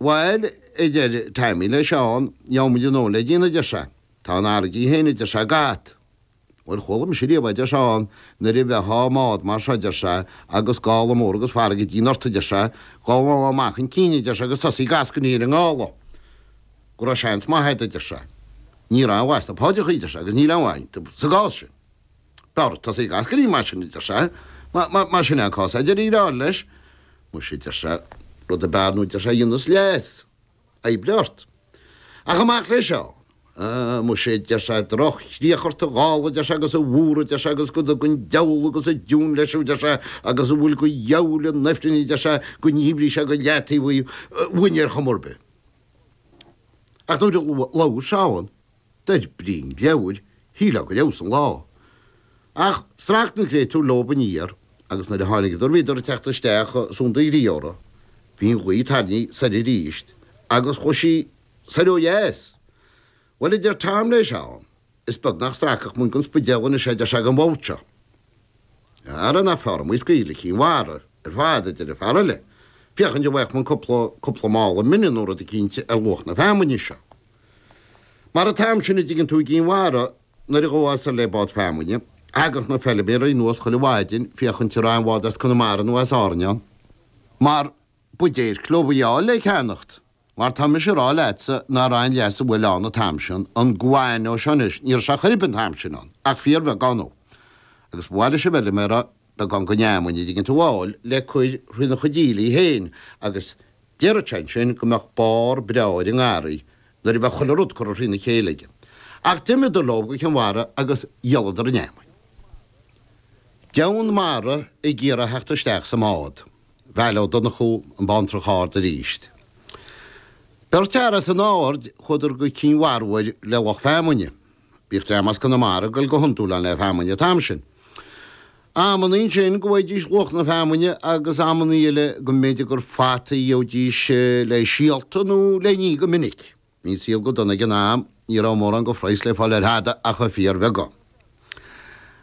Bhail, a deir Taimí le Seán, gheobhaimid anonn le déanamh, a deir sé. Tá an fharraige féin, a deir sé, ag at. Bhuel, chuala mise riamh, a deir Seán, nuair a bheitheá i mbád mar seo, a deir sé, agus gála mór agus farraige dian ort, a deir sé, dhá ngabhfá amach chun cinn, a deir sé, agus tosaí ag eascainí ar an ngála, go raibh seans maith agat, a deir sé. Ní raibh aon mhaith sna paidreacha, a deir sé, agus níl aon mhaith ann sa gcás sin. B'fhearr tosaí ag eascainí mar sin, a deir sé. Más in é an cás, a deir an fear eile leis. Muise, a deir sé, rud ar bith ar ndóigh, a deir sé, a dhéanfas leas, oibrigh ort. Ach amach le Seán. Muise, a deir sé, droch-chríoch ort a ghála, a deir sé, agus a mhuir, a deir sé, agus go dtuga an diabhal agus an deamhan leis thú, a deir sé, agus a bhfuil go dhiabhail in ifreann, a deir sé, go ndíbrí sé go leataobh í uainn ar chuma ar bith. Ach nuair a labhair Seán. dar brí an leabhair, shílfeá gur fheabhsaigh an lá. Ach strac na créatúir leob aniar agus nuair a tháinigeadar bhíodar ag teacht isteach Sunda Ghríora. Bhí an ghaoth tarraingthe soir arís agus chuaigh sí soir ó dheas. Bhuel, a deir Tom le Seán, is beag nach stracfadh muinn gon Spidéal anois é, a deir sé, ag an bhfód seo. Ara nach fearr amuigh scaoileadh le Cinn Mhara ar fad, a deir an fear eile, féachaint an bhfaigheadh muinn cúpla, cúpla mála mine nó rud eicínt ar luach na feamainne seo. Mar atá ansin an dtuigeann tú, i gCinn Mhara nuair a ghabhfá soir le bád feamainne, thagadh na feilméaraí anuas chuile mhaidin féachaint an raibh aon bhád as Conamara nó as Árainn ann, mar ba dhéirc leob í a fháil le ceannacht, mar tá mise ag rá leatsa nach raibh aon leasú eile ann an t-am sin, an guano seo anois, ní raibh sé chor a bith an t-am sin ann ach fíorbheagán dhó, agus ba mhaith leis an bhfeilméara, beagán gon fheamainn, an dtuigeann tú, a fháil le cur thrína chuid aoiligh féin, agus déarfadh sé ansin go mbeadh barr breá ar an ngarraí nuair a bheadh chuile rud curtha thrína chéile aige. Ach d'imíodar leo go Cinn Mhara agus dhíoladar an fheamainn. Deamhan Mara ag iarraidh a theacht isteach sa mbád. Micheál Ó Donnchú An Bantrach Ard aríst. Beirt fhear as an Aird, chuadar go Cinn Mhara uair le lucht feamainne. Bhíodh dream as Conamara ag dul go hiondúil ann le feamainn an t-am sin. Amanna ansin go bhfaighidís luach na feamainne agus amanna eile go mb'fhéidir gur fata a gheobhaidís le síolta nó le n-ithe go minic. Bhí an saol go dona ag an am, ní raibh mórán de phraghas le fáil ar thada ach ar fíor bheagán.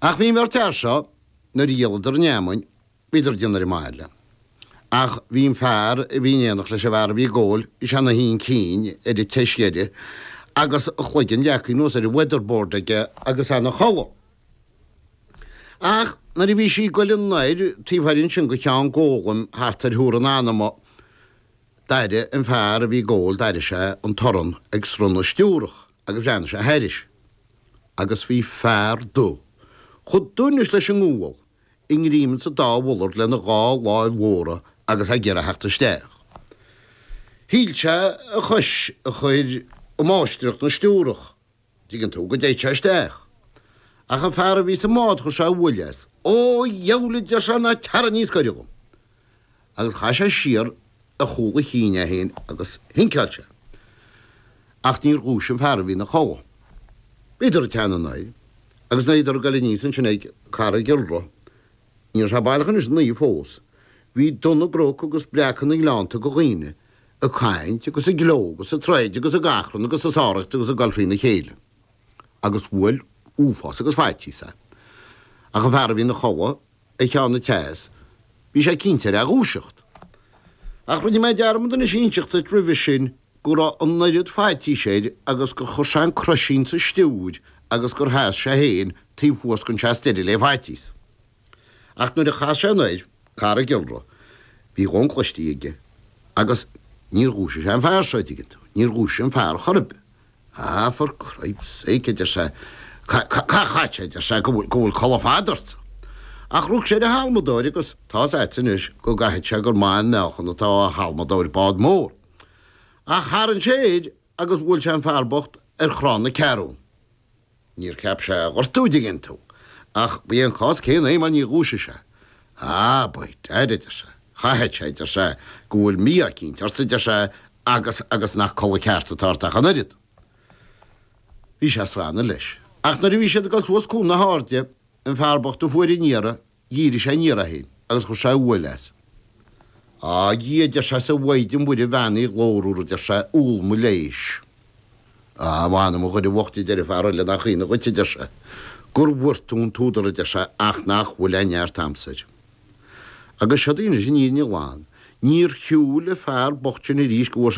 Ach bhí an bheirt fhear seo, nuair a dhíoladar an fheamainn, Bhíodar ag déanamh ar an mbaile. Ach bhí an fear a bhí in éineacht leis an bhfear a bhí ag gabháil is é ina shuí chun cinn ar an tseas dheiridh agus a chloigeann leagtha anuas ar an weatherboard aige agus é ina chodladh. Ach nuair a bhí sí ag goil anoir taobh thoir ansin go Cheann Gólaim thart ar Thuar an Anama d'airigh an fear a bhí ag gabháil, d'airigh sé an torann ag srón na stiúrach agus bhreathnaigh sé thairis agus bhí fear dubh chomh dubh anois leis an ngual, i ngreim sa dá mhullard lena dhá láimh mhóra agus é ag iarraidh a theacht isteach. Shíl sé a chois a chur i máistreacht na stiúrach, an dtuigeann tú, go dtiocfadh sé isteach. Ach an fear a bhí sa mbád chuir sé uaill as. Ó, a dheabhail, a deir sé, ná teara níos goire dhom. agus chaith sé siar ar chúl a chinn é féin agus shinceáil sé. Acht níor dhúisigh an fear a bhí ina chodhladh. Bhíodar ag teannadh anoir, agus nuair a bhíodar ag goil aníos annsin ag Carraig Iolra, ní raibh sé baileach anois ina oíche fós, bhí dubh na gcroc agus breacadh na ngleannta go dhaoine, ag caint agus ag gleo agus ag troid agus ag achrann agus ag sáraíocht agus ag gol thrína chéile, agus bhuail uafás agus faitíos é. Ach an fear a bhí ina chodhladh. ag ceann an tseas, bhí sé cinnte air a dhúiseacht. Ach rinne mé dearmad anois inseacht duit roimhe sin go raibh an oiread faitís air agus gur chuir sé an croisín sa stiúir agus gur sheas sé fhéin taobh thuas gon tseas deiridh lé faitíos. Ach nuair a chas sé anoir Carraig Iolra, bhí dhon cloistí aige agus níor dhúisigh sé an fear seo, a' dtuigeann tú, níor dhúisigh an fear chor a' bith. Á, for Christ sake, a deir sé, caith chaithfeadh sé, a deir sé, go bhfuil codladh fada ort. Ach rug sé ar an halmadóir agus tá's a't anois go gcaithfidh sé gur maith an meáchan atá i halmadóir bád mór. Ach tharraing sé air agus bhuail sé an fear bocht ar chrann na ceathrún. Níor cheap sé a ghortú, an dtuigeann tú, ach ba é an cás céanna é mar níor dhúisigh sé. Á, by dad, a deir sé, chaithfeadh sé, a deir sé, go bhfuil mí-ádh eicínt ort, a deir sé, agus, agus nach codladh ceart atá ort ach an oiread. Bhí sé ag srannadh leis. Ach nuair a bhí siad ag dul suas Cuan na hAirde, an fear bocht a fuair an iarraidh, Dhírigh sé aniar é féin agus chuir sé uaill as. Á, a Dhia, a deir sé, is a Mhaighdean Mhuire bheannaithe ghlórmhar, a deir sé, umhal mo leighis. Á, a mh'anam, a dhuine bhocht, a deir an fear eile, nach ionadh dhuit, a deir sé, go bhfuair tú an t-údar, a deir sé, ach nach bhfuil aon neart a'msa air. Agus seod anois an fhírinne ghlan. Níor shiúil an fear bocht sin arís go bhfuair sé